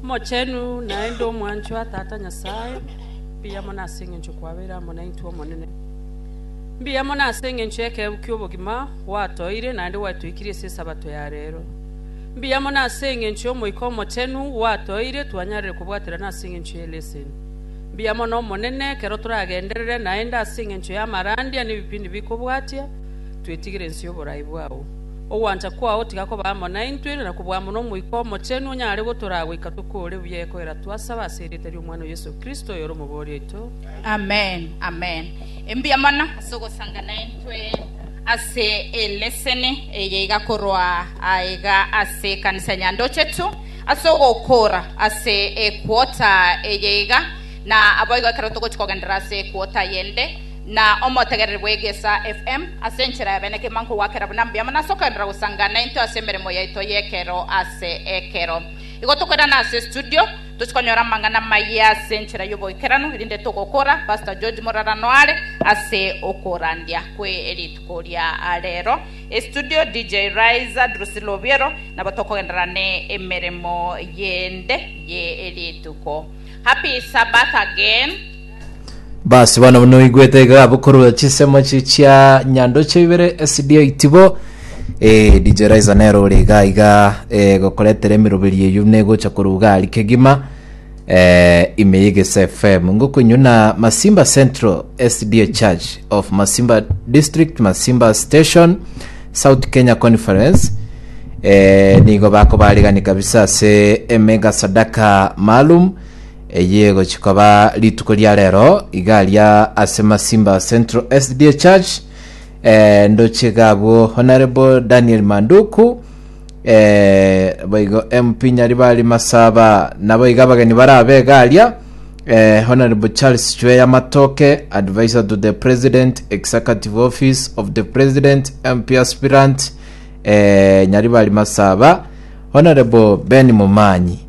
Omochenu naende omwanchwa Tata Nyasae, mbuya mono ase engencho kwabeire amo naintwe, Omonene. Mbuya mono ase engencho y'ekeegu ki'obogima gwatoeire naende gwatoikirie ase Esabato ya reero. Mbuya mono ase engencho y'Omoika Omochenu gwatoeire twanyarire kobwaterana ase engencho ye leseni. Mbuya mono Omonene, ekero toragenderere naende ase engencho y'amarandia na ebipindi bikobwatia, twetigire ense y'oborai bwao. Ogwancha kwao tiga koba amo naintwe, na kobua amo n'Omoika Omochenu onyare gotoraa goika tokore buya ekoera twasaba ase erieta ri'Omwana o Yeso Kristo, oyore Omobori oito. Amen, amen. Mbuya mono ase ogosanga naintwe ase eleseni eye iga korwa aiga ase ekanisa ya Nyandochetu, ase ogokora ase equota eye iga, na aboigo ekero togochia kogendera ase equota eyende, na omotegereri bw'egesa FM ase enchera ya bene kegima nkogwakera buna mbiama na ase okoenderera gosanga naintwe ase emeremo yaito y'ekero ase ekero. Igo tokoirana ase estudio, tochie konyora amang'ana amaya ase enchera y'oboikeranu, erinde togokora Pastor George morarano are ase okorandia kwe rituko ria rero. Estudio DJ Raiza Drusilla Obiero, nabo tokogenderera ne emeremo yende ye rituko. Happy Sabbath again. Basi bono buna oigwete iga abwo korwa chisemo echi chia nyandoche ibere esidio itibo eh, DJ Raiza nero ore iga iga eh, gokoretera emiroberi eyio negocha korwa gari kegima eh, ime yegese FM ngokoinyuna Masimba Central SDA Church of Masimba District Masimba Station South Kenya Conference eh, nigo bakobaregani kabisa ase emega sadaka maalum Eye egochi koba rituko ria rero iga aria ase Masimba Central SDA Church eh, ndoche iga abwo Honorable Daniel Manduku eh, boigo MP Nyaribari Masaba nabo iga abageni barabe iga aria eh, Honorable Charles Chweya Matoke Advisor to the President Executive Office of the President MP Aspirant eh, Nyaribari Masaba Honorable Ben Mumanyi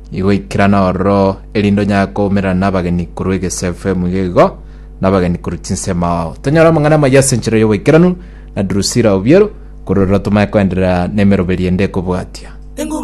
Igo ikerana ororo, erinde onyare koumerana nabageni korwa egesaku efemu iga igo, nabageni korwa chinsemo ao. Tonyore amang'ana amayia ase enchera y'oboikeranu na Drusila o Biero, korwa ororo tomanye koenderera nemeroberio ende ekobwatia.